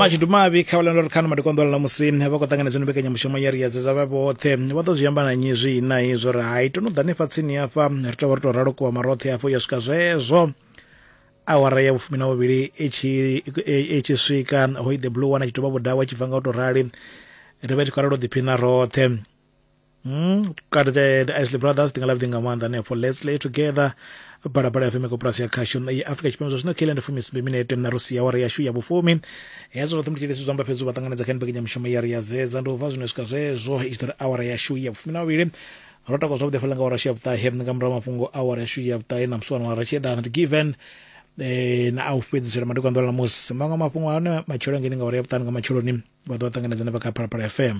mashudu mavhi kha vhalanda uri khano madikonḓo ḽa musi vha khou ṱanganedza no mbekanyamushumo ya ri yadzedza vha vhoṱhe vha ḓo zwi amba na nyi zwi na hezwo uri hai to no ḓani fha tsini hafha ri tovha ri to ralo kuwa maroṱhe hafho ya swika zwezwo awara ya vhufumi na vhuvhili i tshi swika hoi the blue one a tshi tovha vhudawa a tshi bva nga u to rali ri vha tshi khou ralo ḓiphina roṱhe Mm, kati the, the isley brothers ndi nga lavhudi nga maanḓa hanefho let's lay together balabala ya feme koporasi ya khashu ya afrika tshipembe zwa zwino kele ndi fumi sumbe minete na rusi ya wara yashu ya vhufumi hezwo zwoṱhe ndi tshilisi zwa amba fhedzi u vha ṱanganedza kha mbekanyamushumo ya ri ya zedza ndi u bva zwino swika zwezwo i tshi ḓo ri awara yashu ya vhufumi na vhavhili ro takwa zwavhuḓi fhala nga awara yashu ya vhuṱahe nga murahu mafhungo awara yashu ya vhuṱahe na musi wana ra tshi eḓana ndi given eh, na a u fhedzisela madekwanḓola na musi maṅwe mafhungo ane matshelo ngeni nga awara ya vhuṱanu nga matsheloni vha ḓo ṱanganedza na vha kha phalaphala fm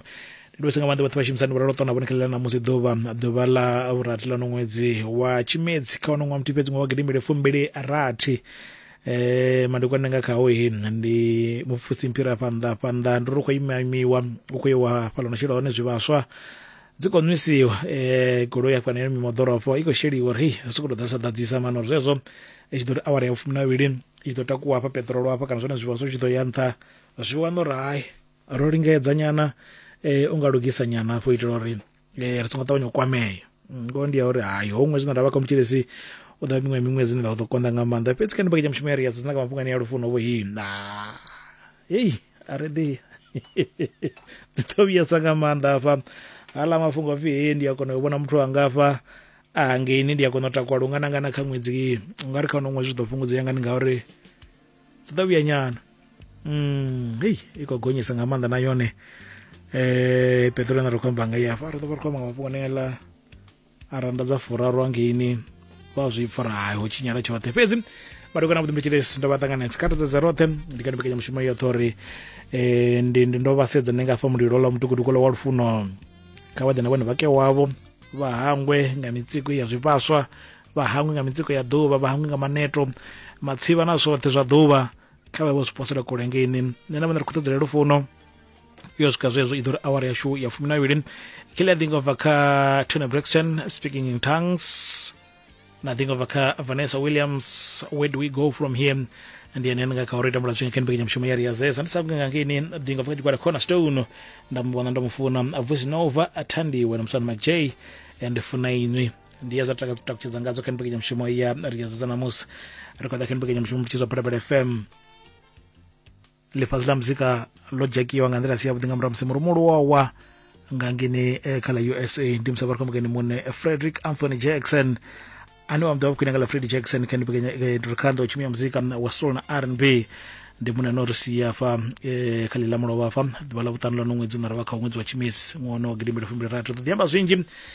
ndi dovhese nga maanḓa vhathu vha shumisani vhuralo ṱona vhone khalela namusi ḓuvha ḓuvha ḽa vhurathi ḽa no ṅwedzi wa tshimedzi kha wono ṅwa muthihi fhedzi ṅwa wa gidimbili fumbili rathi eh madekwana nga khaho he ndi mupfusi mphira fhanḓa fhanḓa ndi ri khou imamiwa u khou yewa fhaḽa no shela hone zwivhaswa dzi khou nwisiwa um goloi ya fhana yo mimoḓorofo i khou sheliwa uri hei ri sokou tou ḓa sa ḓadzisa mano uri zwezwo i tshi ḓo ri awara ya vhufumi na vhili i tshi ḓo takuwa hafha peṱirolo hafha kana zwone zwivhaswa zwi tshi ḓo ya nṱha Zwi wana uri hai ro lingedza nyana eh, unga lugisa nyana hafho itela uri eh, ri songo ṱavhanya u kwamea ngoho ndi ya uri hai ho ṅwedzi na ndavha kha mutshilisi u ḓa miṅwe miṅwedzi ni ḓa ḓo konḓa nga maanḓa fhedzi kha ndibakenya mushumo ya ri yadzina nga mafhungo ane ya lufuno vho hei na hei a ri ḓi dzi ḓo vhuyesa nga maanḓa hafha haḽa mafhungo pfhi hei ndi a kona u vhona muthu angafha a hangeini ndi a kona u takuwa lungana ngana kha ṅwedzi u nga ri kha uno ṅwedzi zwi ḓo fhungudzea ngani ngauri dzi ḓa vhuya nyana mm hei i khou gonyesa nga maanḓa na yone eh peṱolo ine ri khou amba nga i afha ri ḓo vha ri khou amba nga mafhungo anengela a randa dza furaru angeini vha zwi pfara hai ho tshinyala tshoṱhe fhedzi malugana na vhuḓimbetshilesi ndo vha ṱanganedza kha tadzadza roṱhe ndi kha mbekanyamushumo yoṱhe uri um ndi ndo vha sedza ndi nga fha mulilo ḽa mutukutuku ḽa wa lufuno kha vha ḓe na vhone vhake wavho vha hangwe nga mitsiko ya zwivhaswa vha hangwi nga mitsiko ya ḓuvha vha hangwi nga maneto matsivha na zwoṱhe zwa ḓuvha kha vha vho zwi posela kule ngeini nṋe na vhone ri khou ṱodzela lufuno yo swika zwezwo i ḓo ri awara yashu ya fumi na vhili kile a ḓinga ubva kha tony brixton speaking in tongues na ḓinga ubva kha vanessa williams where do we go from here ndi ene nga kha uri tambula zwinga kha mbekanyamushumo ya riazesa ndi sa kunga nga ngeni ḓinga ubva kha tshigwada corner stone nda mu vhona ndo mu funa vusinova athandiwe na musana mcj and funa inwi ndi ya zwa taka- takutshedza ngadzo kha mbekanyamushumo ya ri ya zedza namusi ri khou ḓa kha mbekanyamushumo mutshizwa phalaphala fm ḽifhasi ḽa muzika ḽo dzhakiwa nga nḓila si yavhuḓi nga murahu musi murumu luwawa nga ngeni eh, kha ḽa usa ndi musi vha ri khou mukeni muṋe eh, frederick anthony jackson ane wa muḓivha khwine nga ḽa fredi jackson kha ndipekanyadurikhanḓa u tshimia muzika wa soul na r n b ndi muṋe no ri sia hafha eh, kha ḽi ḽa mulovha hafha ḓuvha ḽa vhuṱanu ḽa no ṅwedzi unara vha kha ṅwedzi wa tshimisi ṅwaha wa gidimbili fumbili rathi ri ḓo ḓi amba zwinzhi